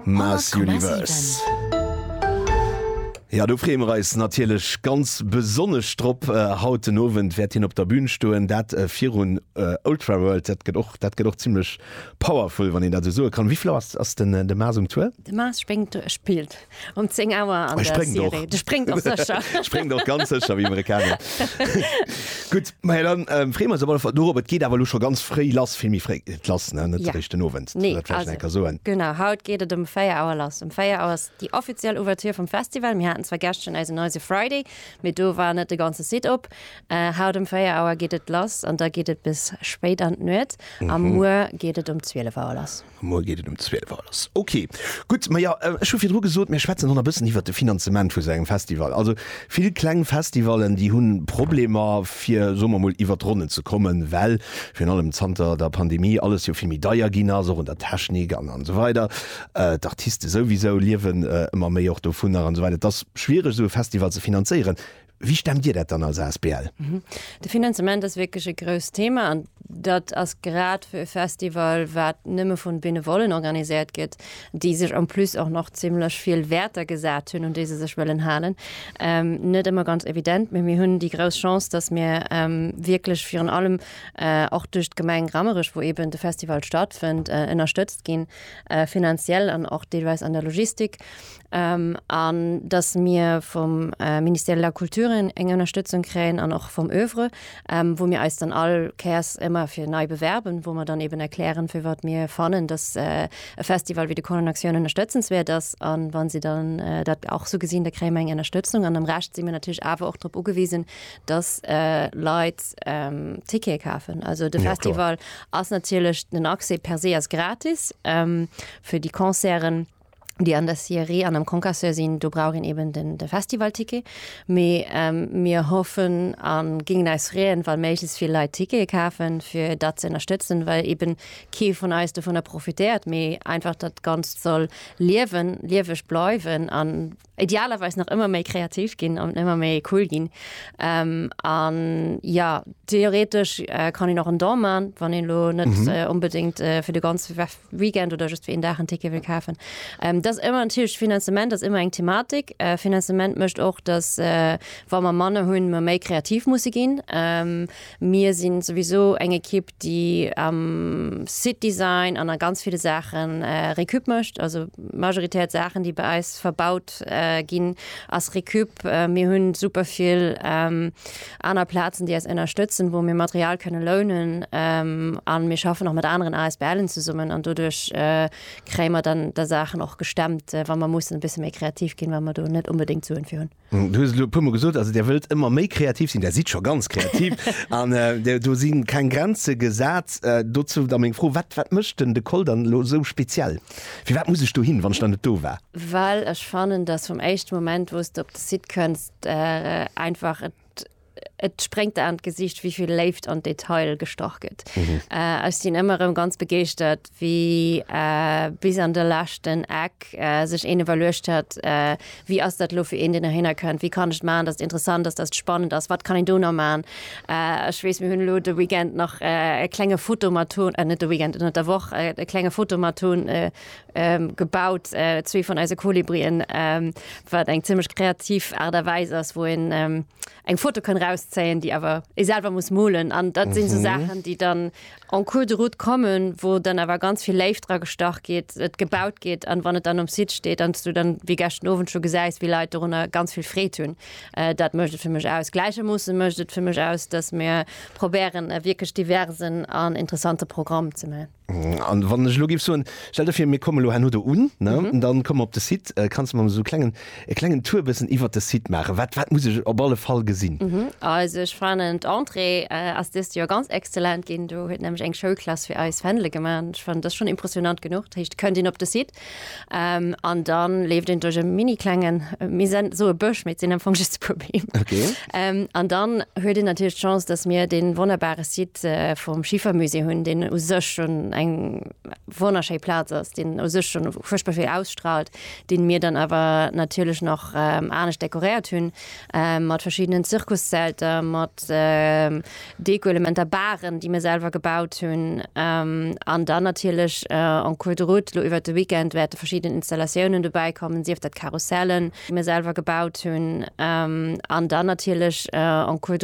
Mass Universe. Jo do freeë mer eis natierlech ganz besonnesch drop. Haut den Owend wäert hien op der Bün stoen, dat virun Ultraworld. Dat gëtt och dat gëtt och zimmlech powerful, wann een dat esou soe kann. Wéi vill Auer ass ass den de Mass um Tour? De Mass spéngt spillt Um 10 Auer an der Serie. De spréngt och sécher. Spréngt och ganz sécher wéi Amerikaner. Gutt, mä dann freeë mer eis op alle Fall dorop. Et geet awer elo scho ganz fréi lass, vill méi fréi geet et lass, net eréischt den Owend. Dat vläicht nach eng Kéier soen. Genau, haut geet et ëm 4 Auer lass. Ëm 4 Auer ass déi offiziell Ouverture vum Festival. Mir haten zwar gestern eisen Noisy Friday, mee do war net de ganze Site op. Haut ëm 4 Auer geet et lass an da geet et bis spéit an d'Nuet. A muer geet et um 12 Auer lass. Muer geet et um 12 Auer lass. Ok, gutt. Ma jo, ech hu virdru gesot, mir schwätzen hon e bëssen iwwert de Finanzement vu sou engem Festival. Also vill kleng Festivallen, déi hu Problemer, fir, soe mer emol, iwwert d'Ronnen ze kommen, well virun allem zanter der Pandemie alles jo vill méi deier ginn ass, och un der Technik an esou weider. D'Artiste souwisou liewen ëmmer méi och dovunner an esou weider. Et ass schwiereg, esou e Festival ze finanzéieren. Wéi stemmt Dir dat dann als asbl? De Finanzement ass wierklech e grousst Thema an dat ass grad fir e Festival, wat nëmme vun Benevollen organiséiert gëtt, déi sech en plus och nach zimmlech vill Wäerter gesat hunn, un déi se sech wëllen halen, net ëmmer ganz evident. Mee mir hunn déi grouss Chance, dass mir wierklech virun allem och duerch d'Gemeng Rammerech, wou eeben de Festival stattfënnt, ënnerstëtzt ginn, finanziell an och deelweis an der Logistik. an dass mir vum Ministère de la Culture eng Ënnerstëtzung kréien an och vum Oeuvre, wou mir eis dann all Kéiers ëmmer fir nei bewerben, wou mer dann eeben erklären, firwat mir fannen, dass e Festival wéi de Colonne Action ënnerstëtzenswäert ass. A wa si dann dat och esou gesinn, da kréie mer eng Ënnerstëtzung. An am Rescht si mir natierlech awer och drop ugewisen, dass Leit Tickete kafen. Also de Festival ass natierlech, den Accès per se ass gratis fir déi Concerten. déi an der Sieree an am Concasseur sinn, do brauch een eben den, de Festivalticket. Mee ähm, mir hoffen a gingen eis freeën, wa méiglechst vill Leit Tickete kafen, fir dat ze ënnerstëtzen, well eben kee vun eis dovunner profitéiert, mee einfach dat Ganzt soll liewen, lieweg bleiwen an idealerweis nach ëmmer méi kreativ ginn an ëmmer méi cool ginn an ja theoretesch kann een och en Don man, wann een lo net mhm. äh, unbedingt äh, fir de ganze Weekend oder just fir en Dach en Ticket will kafen. Ähm, das ëmmer en Tisch Finanzement ass immer eng Thematik. Äh, Finanzement mëcht och, dass äh, wa man Manne hunn ma méi kreativ musse ginn. Ähm, Mir sinn souwiso eng Equipe déi am Site Design an a ganz ville Saachen Récup mécht. Also majoritär d'Saachen déi bei eis verbaut ginn ass Récup. Mir hunn super vill aner Plazen déi eis ënnerstëtzen wou mir Material kënne lounen an mir schaffen och mat aneren ASBLen zesummen an doduerch kréie mer dann da Saachen och gestemmt wa mer mussen e bësse méi kreativ ginn wa mer do net onbedéngt d'Suen fir hunn. Du hues et elo e puermol gesot, also Där wëllt ëmmer méi kreativ sinn, Där sidd scho ganz kreativ an do si keng Grenze gesat. Dozou da meng Fro, Wat wat mécht den De Coll dann elo esou speziell? Firwat muss ech dohin, wann ech nach net do war? Well ech fannen, datt vum éischte Moment, wou s de op de Site kënns, einfach et Et spréngt der an d'Gesiicht, wéi vill Léift an d'Detail gestach gëtt. Ech sinn ëmmer erëm ganz begeeschtert, wéi bis an de leschten Eck sech een iwwerluecht huet, wéi ass dat elo fir een, deen dohinner kënnt, wéi kann ech maachen, datt et interessant ass, datt et spannend ass, wat kann een do nach maachen. Ech weess, mir hunn elo de Weekend nach e klenge Fotomaton, net de Weekend, ënner der Woch e klenge Fotomaton gebaut zwee vun eise Kolibrien, wat eng zimlech kreativ Aart a Weis ass, wou een eng Foto kann rauszéien, déi awer ee selwer muss molen. An dat sinn esou Saachen, déi dann en cours de route kommen, wou dann awer ganz vill Léift dra gestach gétt, et gebaut gétt an wann et dann um Site steet an s du dann wéi geschten Owend scho gesäis, wéi Leit dorunner ganz vill Freed hunn. Dat mécht et fir mech aus. Gläichermoosse mécht et fir mech aus, datt mir probéieren e wierklech diversen an interessante Programm ze man. An wann ech lo giff soen, stell der vir mir komme lo herno do un, ne, an dann komme mer op de Site, äh, kanns de mer esou klengen, e klengen Tour bëssen iwwert de Site maachen? Wat, wat muss ech op alle Fall gesinn? Also ech fannen d'Entrée äh, ass dëst Joer ganz exzellent ginn, do huet nämlech eng Schoulklass fir eis Fändele gemaach. Ech fannen, dat ass schonn impressionant genuch. Dat heescht, kënnt een op de Site, Ähm, an dann leeft en duerch e mini klengen äh, mir sind so e Bësch, mit sinn am Fong just e puer Beem. Okay. Ähm, an dann huet en natierlech d'Chance, dass mir den wonnerbare Site äh, vum Schiefermusée hunn, den u sech schon eng wonnerschéi Plaz ass, den u sech schon furchtbar vill ausstrahlt, den mir dann awer natierlech noch ähm, anescht dekoréiert hunn. mat verschiddenen Zirkuszelter, mat Dekoelementer, Baren, déi mir selwer gebaut hunn an dann natierlech en cours de route lo iwwert de Weekend wäerte verschidden Installatiounen dobäi kommen, sief dat Karussellen, déi mir selwer gebaut hunn an dann natierlech en cours de.